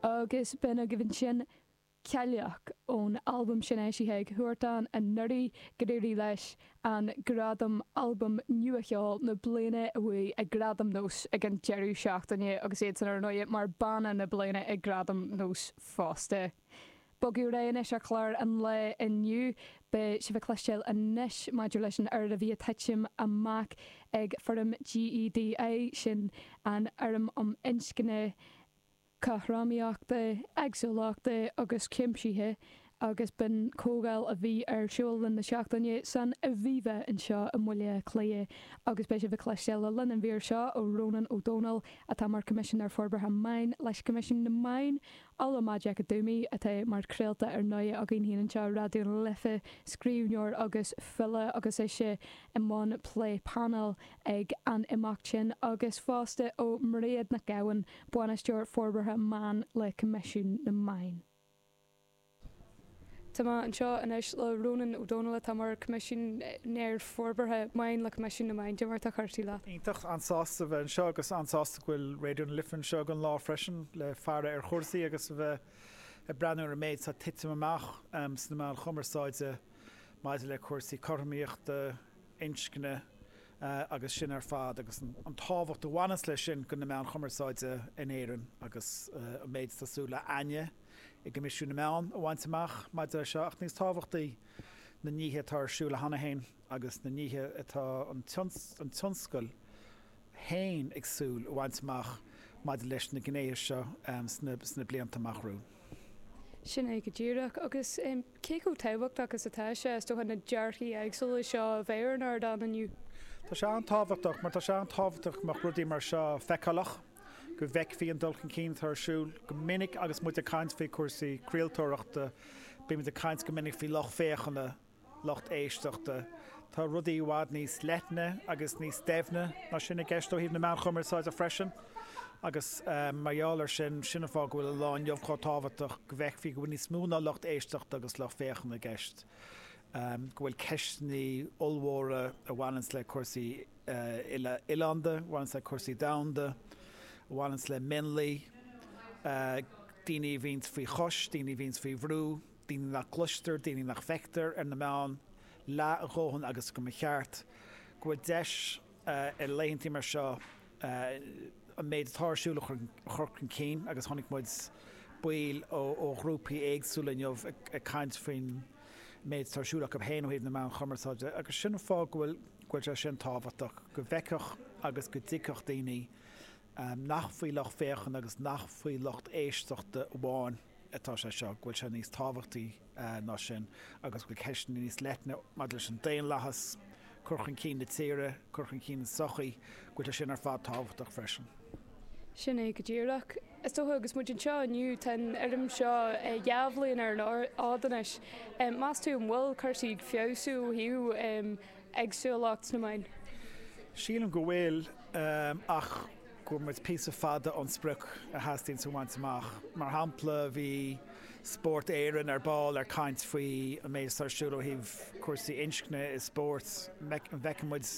agus b'in agaibh ansin Cailleach ón albam sin eisithe ag Huartan anuraidh, gur éirigh leis an gradam Albam Nua Cheol na Bliana a bhuaigh ag Gradaim Nós ag an deireadh seachtaine agus iadsan ar ndóigh mar Banna na Bliana ag Gradaim Nós fosta. Bogadh ar aghaidh anois ar chlár an lae inniu. Beidh sibh ag cloisteáil anois maidir leis an rud a bhí ag titim amach ag fóram GEDI, sin an fóram um inscne cothromaíochta, éagsúlachta agus cuimsithe, agus b'in comhdháil a bhí ar siúl le linn na seachtaine san Aviva anseo i mBaile Átha Cliath. Agus beidh sibh ag cloisteáil le linn an mhír seo ó Rónán Ó Domhnaill, atá mar Choimisinéir Forbartha Meáin leis Coimisiún na Meán Ola Majekodunmi, atá mar chraoltóir ar ndóigh againn féin anseo i Raidió na Life, scríbhneoir agus file agus ise i mbun plé painéil ag an imeacht sin, agus fosta ó Mairéad Nic Gabhann, Bainisteoir Forbartha Meán le Coimisiún na Meáin. Tá mé anseo anois le Rónán Ó Domhnaill atá mar Coimisinéir Forbartha Meáin le Coimisiún na Meán cad é mar atá cúrsaí leat. Iontach, an-sásta bheith anseo agus an-sásta go bhfuil Raidió na Life anseo ag an lá freisin le faire ar chúrsaí agus a bheith ag breathnú ar an méid atá ag titim amach sna meáin chumarsáide maidir le cúrsaí cothromaíochta inscne agus sin ar fad agus an tábhacht a bhaineas leis sin go na meáin chumarsáide in Éirinn agus an méid atá súil againne i gCoimisiún na Meán a bhaint amach maidir leis seo ach níos tábhachtaí na nithe atá ar siúl cheana féin agus na nithe atá an tionscal féin ag súil a bhaint amach maidir leis na gnéithe seo sna blianta amach romhainn. Sin é go díreach agus Cé chomh tábhachtach is atá sé, is dócha, na dearcthaí éagsúla seo a bheith ar an ardán inniu? Tá sé an-tábhachtach mar tá sé an-tábhachtach go mbeadh rudaí mar seo feiceálach, go bhfeicfí an dul chun cinn atá ar siúl. Go minic agus muid ag caint faoi chúrsaí craoltóireachta, bímid ag caint go minic faoi lucht féachana, lucht éisteachta. Tá rudaí i bhfad níos leithne agus níos doimhne ná sin i gceist ó thaobh na meáin chumarsáide freisin agus mar gheall ar sin, sin an fáth go bhfuil an lá inniu chomh tábhachtach go bhfeicfí go bhfuil níos mó ná lucht éisteachta agus lucht féachana i gceist, go bhfuil ceisteanna ollmhóra a bhaineanns le cúrsaí uile-oileánda, a bhaineanns le cúrsaí domhanda, a bhaineanns le mionlaigh, daoine a bhíonns faoi chois, daoine a bhíonns faoi bhrú. daoine nach gcloistear, daoine nach bhfeictear ar na meáin leath a dhóthain agus go mba cheart go bhfuil deis ar laethantaí mar seo an méid atá ar siúl a chur chun cinn agus chonaic muid baill ó ghrúpaí éagsúla inniu ag caint faoin méid atá ar siúl acu féin ó thaobh na meáin chumarsáide agus sin an fáth go bhfuil sé sin tábhachtach go bhfeicfeadh agus go dtuigfeadh daoine nach faoi lucht féachana agus nach faoi lucht éisteachta amháin atá sé seo, go bhfuil sé níos tábhachtaí ná sin agus go bhfuil ceisteanna níos leithne maidir leis an daonlathas, cur chun cinn na tíre, cur chun cinn na sochaí, go bhfuil sé sin ar fad tábhachtach freisin. Sin é go díreach. Is dócha, agus muid anseo inniu, tá an fóram seo dhá bhliain ar an fhód anois. Meas tú an bhfuil cúrsaí ag feabhsú ó thaobh éagsúlachta sna meáin. Sílim go bhfuil, ach go bhfuil muid píosa fada ón sprioc a theastaíonn a bhaint amach. Mar shampla, bhí Spórt Éireann ar ball ag caint faoi an méid atá ar siúl ó thaobh cúrsaí inscne i spórt. An bhfeiceann muid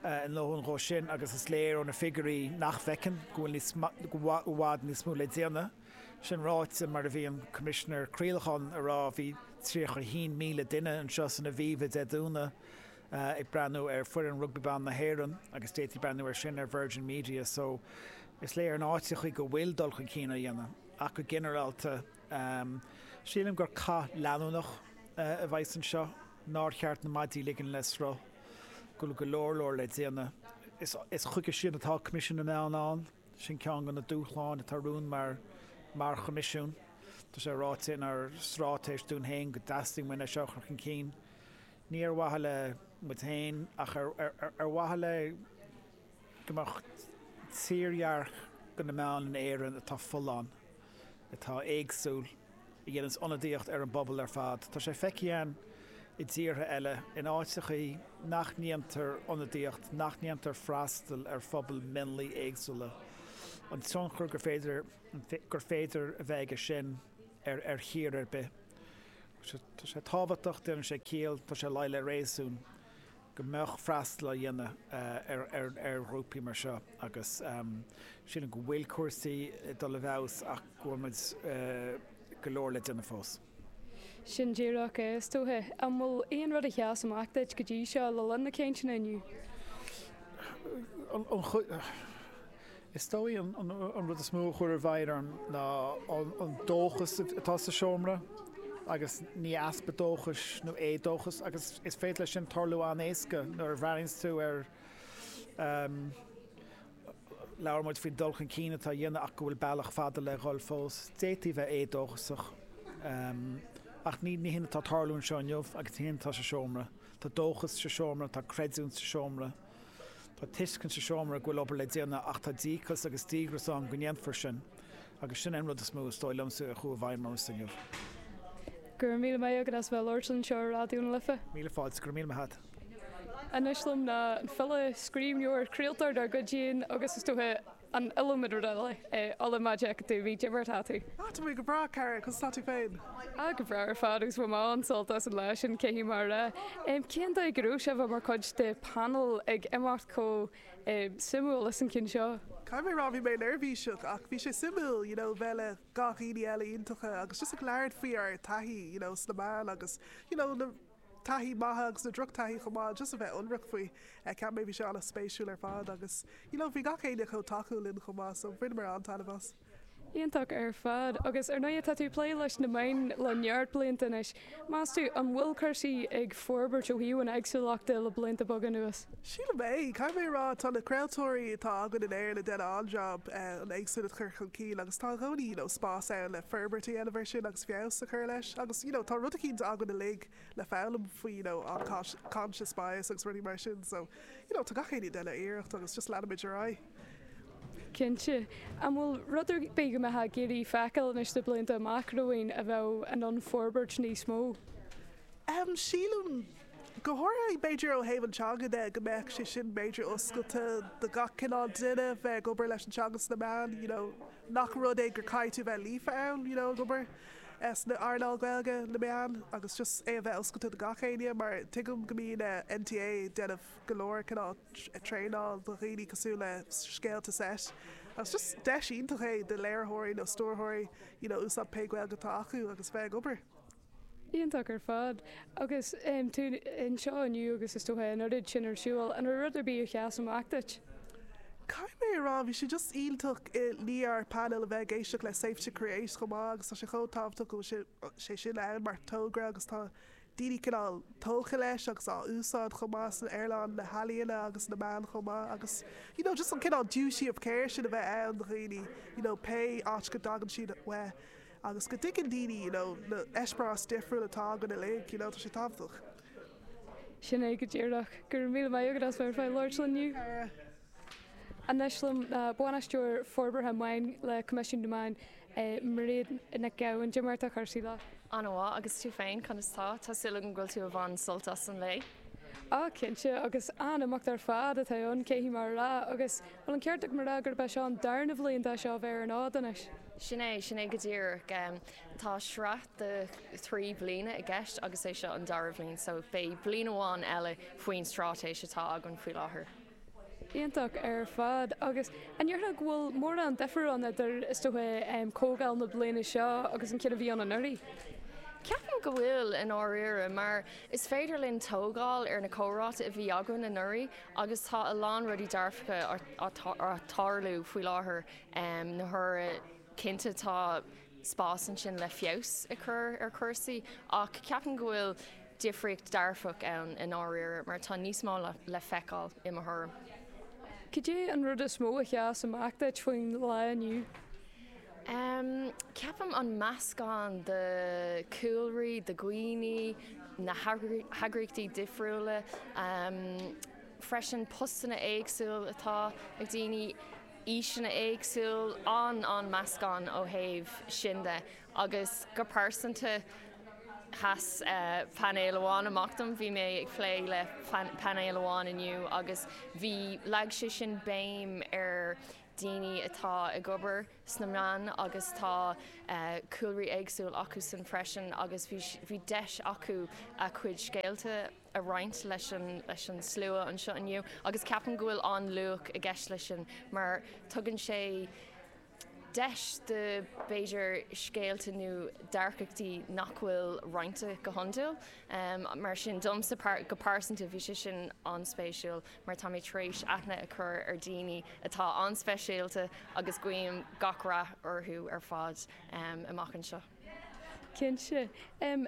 a ndóthain dhó sin agus is léir ó na figiúirí nach bhfeiceann, go bhfuil níos, go bhfuil i bhfad níos mó le déanamh. Sin ráite, mar a bhí an Coimisinéir Craolacháin a rá, bhí 31,000 duine anseo san Aviva Dé Domhnaigh ag breathnú ar foireann Rugbaí Ban na hÉireann agus d'fhéadfaí breathnú ar sin ar Virgin Media so is léir in áiteachaí go bhfuil dul chun cinn á dhéanamh ach go ginearálta sílim gur cath leanúnach a bheidh anseo nár cheart na maidí a ligean le sruth, go bhfuil go leor leor le déanamh is chuige sin atá Coimisiún na Meán ann. Sin ceann de na dúshláin atá romhainn mar mar Choimisiún. Tá sé ráite inár stráitéis dúinn féin go dteastaíonn uainn é seo a chur chun cinn, ní ar mhaithe linn féin ach ar ar mhaithe le go mbeadh tírdhreach do na meáin in Éirinn atá folláin. atá éagsúil, a dhéanas ionadaíocht ar an bpobal ar fad. Tá sé feicthe againn i dtíortha eile, in áiteachaí nach ndéantar ionadaíocht, nach ndéantar freastal ar phobail mionlaigh éagsúla, an tionchar gur féidir gur féidir a bheith aige sin ar ar thír ar bith. Tá sé tábhachtach, déanann sé ciall, tá sé de réir réasúin. go mbeadh freastal á dhéanamh ar ghrúpaí mar seo agus sílim go bhfuil cúrsaí ag dul i bhfeabhas ach go bhfuil muid go leor le déanamh fós. Sin díreach é, is dóiche. An bhfuil aon rud a sheas amach duit go dtí seo le linn na cainteanna inniu? Is dóigh an rud is mó a chuaigh i bhfeidhm orm ná an dóchas atá sa seomra agus ní easpa dóchais nó éadóchas agus is féidir leis sin tarlú an-éasca nuair a bhreathnaíonns tú ar Labhair muid faoin dul chun cinn atá á dhéanamh ach go bhfuil bealach fada le dhul fós. D'fhéadfaí bheith éadóchasach ach ní hé atá ag tarlú anseo inniu agus ní hé atá sa seomra. Tá dóchas sa seomra, tá creidiúint sa seomra. Tá tuiscint sa seomra go bhfuil obair le déanamh ach tá díocas agus díogras ann go ndéanfar sin agus sin é an rud is mó is dóigh liomsa a chuaigh i bhfeidhm ormsa inniu. Go raibh míle maith agat as bheith ag labhairt linn anseo ar Raidió na Life. Míle fáilte, go raibh míle maith agat. Anois liom ná an file, scríbhneoir, craoltóir dár gcuid féin agus is dócha, An iliomad rud eile. É Ola Majekodunmi, cad é mar atá tú. Tá mé go breá, cara, conas tá tú féin? Ah, go breá ar fad, agus bhain mé an-sult as an lá sin, caithfidh mé a rá. Em, cén dóigh a raibh sé bheith mar chuid de panel ag imeacht chomh, em, suimiúil is an ceann seo? Caithfidh mé rá bhí mé neirbhíseach ach bhí sé suimiúil, you know, bheith le gach aoinne eile iontacha agus just ag labhairt faoi ár taithí, you know, sna meáin agus, you know, na. taithí maith agus na drochtaithí chomh maith just a bheith ionraic faoi ceapaim mé bhí sé ana spéisiúil ar fad agus you know bhí gach éinne chomh tacúil linn chomh maith so bhaineamar an-taitneamh as. Iontach ar fad. Agus ar ndóigh tá tú ag plé leis na meáin le neart blianta anois. Meas tú, an bhfuil cúrsaí ag forbairt ó thaobh an éagsúlachta le blianta beaga anuas? Sílim é. Caithfidh mé a rá tá na craoltóirí atá againn in Éirinn ag déanamh an-jab an éagsúlacht a chur chun cinn agus tá i gcónaí you know spás ann le forbairt a dhéanamh air sin. feabhas a chur leis agus you know tá rud eicínt againn uilig le foghlaim faoi you know unconscious bias agus rudaí mar sin so you know tá gach éinne ag déanamh iarracht agus just leanfaimid ar aghaidh. Cinnte. An bhfuil rud ar bith go mbeifeá ag iarraidh feiceáil anois sna blianta amach romhainn a bheadh in ann forbairt níos mó? Ehm sílim go háirithe b'fhéidir ó thaobh an teanga de go mbeadh sé sin b'fhéidir oscailte do gach cineál duine bheith ag obair leis an teanga sna meáin you know. nach rud é gur caithfidh tú bheith líofa ann you know ag obair sna earnáil Gaeilge, na meáin agus just é a bheith oscailte do gach éinne mar tuigim go mbíonn NTA ag déanamh go leor cineál traenáil do dhaoine cosúil le scéalta seit agus just deis iontach é do léiritheoirí nó stiúrthóirí you know úsáid pé Gaeilge atá acu agus bheith ag obair. Iontach ar fad. Agus tú anseo inniu agus is dócha an oiread sin ar siúl, an raibh rud ar bith a sheas amach duit? Caithfidh mé a rá, bhí sé just iontach lenár painéal a bheith ag éisteacht le Safe to Create chomh maith agus tá sé chomh tábhachtach go bhfuil sé sin ann mar togra agus tá daoine cineál tógtha leis agus á úsáid chomh maith san earnáil na healaíona agus na meán chomh maith agus you know just an cineál duty of care sin a bheith ann do dhaoine you know pé áit go dtagann siad uaidh. Agus go dtuigeann daoine you know na eispéireas difriúil atá againn uilig you know tá sé tábhachtach. Sin é go díreach. Go raibh míle maith agat as bheith ar fáil labhairt linn inniu. Anois liom ná Bainisteoir Forbartha Meán le Coimisiún na Meán, Mairéad Nic Gabhann. Cad é mar atá cúrsaí leat. An-mhaith, agus tú féin, conas tá? Tá súil agam go bhfuil tú ag baint sult as an lae. Á, cinnte, agus an-imeacht ar fad atá ann, caithfidh mé a rá, agus. Bhuel, an ceart agam a rá gurb é seo an darna bhliain dó seo a bheith ar an fhód anois? Sin é, sin é go díreach. Tá sraith de thrí bliana i gceist agus é seo an dara bhliain so beidh bliain amháin eile faoin stráitéis atá againn faoi láthair. Iontach ar fad. Agus an ndéarfá go bhfuil mórán difear ann idir, is dócha, comhdháil na bliana seo agus an ceann a bhí ann anuraidh? Ceapaim go bhfuil, i ndáiríre, mar is féidir linn tógáil ar na comhráite a bhí againn anuraidh agus tá a lán rudaí dearfacha á tarlú faoi láthair na huaire, cinnte tá spás ansin le feabhas a chur ar chúrsaí ach ceapaim go bhfuil difríocht dhearfach ann i ndáiríre mar tá níos mó le feiceáil i mo thuairim. Cad é an rud is mó a sheas amach duit faoin lá inniu? Ceapaim an meascán de cúlraí, de dhaoine, na heagraíochtaí difriúla, freisin postanna éagsúil atá ag daoine, aoiseanna éagsúil, an an meascán ó thaobh sin de. Agus go pearsanta, sheas painéal amháin amach dom, bhí mé ag plé le painéal amháin inniu agus bhí, leag sé sin béim ar daoine atá ag obair sna meáin agus tá cúlraí éagsúil acusan freisin agus bhí deis acu a chuid scéalta a roinnt leis an slua anseo inniu agus ceapaim go bhfuil an-luach i gceist leis sin mar tugann sé deis do b'fhéidir scéalta nó dearcachtaí nach bhfuil roinnte go hiondúil mar sin domsa go pearsanta bhí sé sin an-spéisiúil. mar tá mé tar éis aithne a chur ar daoine atá an-speisialta agus guím gach rath orthu ar fad amach anseo. Cinnte.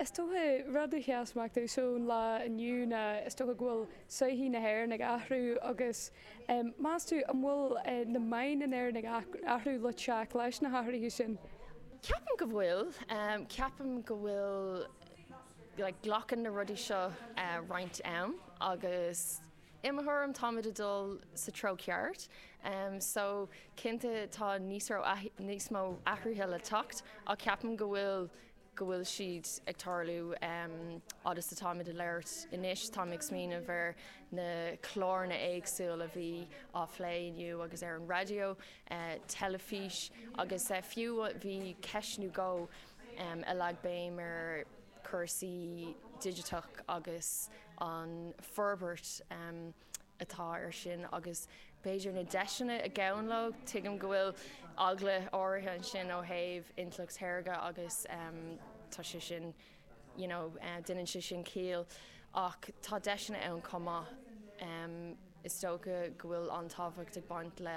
Is dócha, rud a sheas amach domhsa ón lá inniu ná is dócha go bhfuil sochaí na hÉireann ag athrú agus meas tú an bhfuil na meáin in Éirinn ag athrú le teacht leis na hathruithe sin? Ceapaim go bhfuil. Ceapaim go bhfuil Glacann na rudaí seo roinnt am agus i mo thuairim táimid ag dul sa treo ceart so cinnte tá níos mó athruithe le teacht ach ceapaim go bhfuil go bhfuil siad ag tarlú fhad is atáimid ag labhairt anois. Táim ag smaoineamh ar na cláranna éagsúil a bhí á phlé inniu agus ar an raidió, teilifís agus fiú bhí ceist nó dhó, a leag béim ar chúrsaí digiteach agus an forbairt atá ar sin agus b'fhéidir na deiseanna a ghabhann leo. Tuigim go bhfuil eagla áirithe ansin ó thaobh intleacht shaorga agus tá sé sin, you know, déanann sé sin ciall ach tá deiseanna ann chomh maith. Is dócha go bhfuil an-tábhacht ag baint le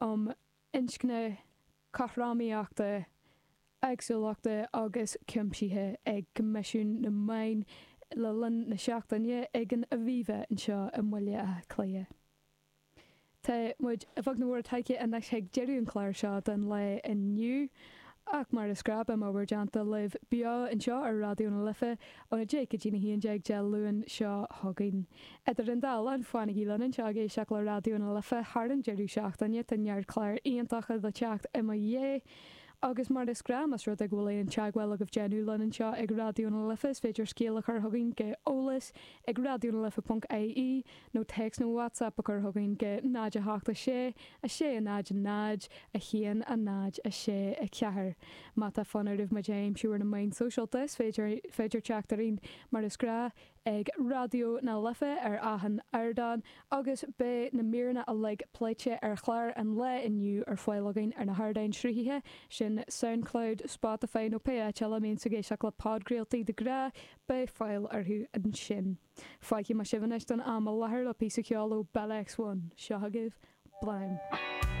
um inscne, cothromaíochta, éagsúlachta agus cuimsithe ag Coimisiún na Meán le linn na seachtaine ag an Aviva anseo i mBaile Átha Cliath. Tá muid nach mór tagtha anois chuig deireadh an chláir seo don lá inniu ach mar is gnáth má mb'áil daoibh beo anseo ar Raidió na Life óna 10 go dtí a 11 Dé Luain seo chugainn. Idir an dá linn, fanaigí linn anseo ag éisteacht le Raidió na Life thar an deireadh seachtaine, tá neart cláir iontacha le teacht i mo dhiaidh. Agus mar is gnáth, más rud é go bhfuil aon teagmháil agaibh déanamh linn anseo ag Raidió na Life, is féidir scéal a chur chugainn, chuig eolas ag raidionalife.ie, nó téacs nó WhatsApp a chur chugainn chuig 0 8 6 6 0 0 1 0 6 4. Má tá fonn oraibh muid a aimsiú ar na meáin sóisialta, is féidir teacht orainn mar is gnáth ag Raidió na Life ar achan ardán agus beidh na míreanna uilig pléite ar chlár an lae inniu ar fáil againn ar na hardáin sruthaithe sin Soundcloud, Spotify nó pé áit eile a mbíonn sibh ag éisteacht le podchraoltaí de ghnáth, beidh fáil orthu ansin. Fágfaidh mé sibh anois don am i lathair le píosa ceoil ó Bell X1. Seo agaibh Flame!